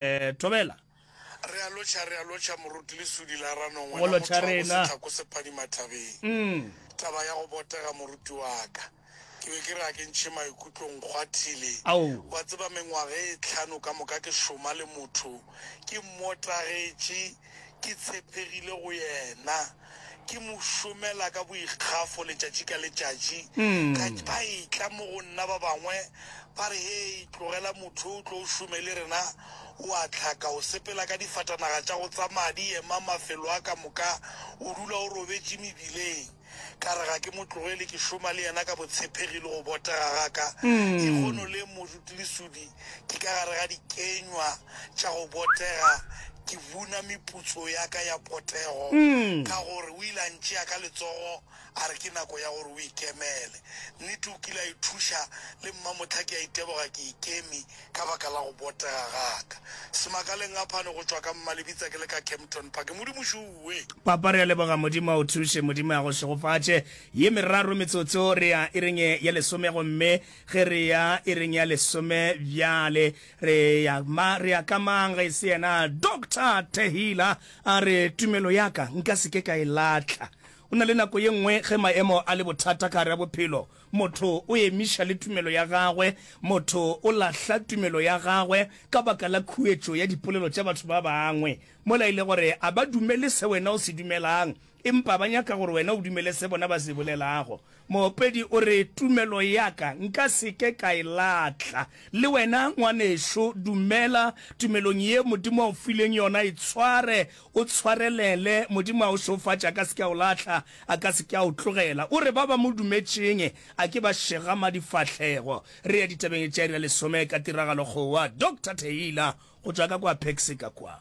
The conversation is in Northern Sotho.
Thobela. Re a lotšha, re a lotšha, moruti lesudi la ranong, wena motho wa go se tlhako sephadima thabeng. Taba ya go botega moruti wa ka, ke be ke re a ke ntšhe maikutlo nkgwathile. Wa tseba mengwaga e tlhano ka moka ke šoma le motho, ke mmotagetše. Ke tshepegile go yena. Ke mo šomela ka boikgafo letšatši ka letšatši. Ka ba etla mo go nna ba bangwe ba re, Hei, tlogela motho yo o tlo o šomele rena. O a hlaka, o sepela ka difatanaga tša go tsamaya di ema mafelo a ka moka, o dula o robetše mebileng. Ka re ga ke mo tlogele, ke šoma le yena ka botshepegi le go botega ga ka. Lehono le moruti lesudi ke ka gare ga dikenywa tša go botega, ke buna meputso ya ka ya potego ka gore o ile a ntšea ka letsogo a re ke nako ya gore o ikemele. Nnete o kile a ithuša, le mmamohla ke a iteboga ke ikeme ka baka la go botega ga ka. Semakalengapane go tšwa ka Mmalebitsa ke le ka Kempton Park. Modimo šuwe! Papa, re a leboga. Modimo a go thuše. Modimo a go šegofatše. Ye meraro metsotso re ya iring ye ya lesome, gomme ge re ya iring ya lesome bjale, re ya, ma, re ya ka mang ge e se yena Doctor Taylor a re, Tumelo ya ka nka se ke ka e lahla. Go na le nako ye nngwe ge maemo a le bothata ka gare ga bophelo, Motho o emiša le tumelo ya gagwe, motho o lahla tumelo ya gagwe ka baka la khuetšo ya dipolelo tša batho ba bangwe, mola e le gore a ba dumele se wena o se dumelang, empa ba nyaka gore wena o dumele se bona ba se bolelago. Moopedi o re, Tumelo ya ka nka se ke ka e lahla. Le wena, ngwanešu, dumela tumelong ye Modimo a go fileng yona, e tshware, O tshwarelele, Modimo a o šeofatše, a ka se ke a o lahla, a ka se ke a o tlogela. O re ba ba mo dumetšeng a ke ba šegama difahlego. Re ya ditabeng tša iri ya lesome ka tiragalo kgowa. Doctor Taylor go tšwa ka kwa Pexica kwa.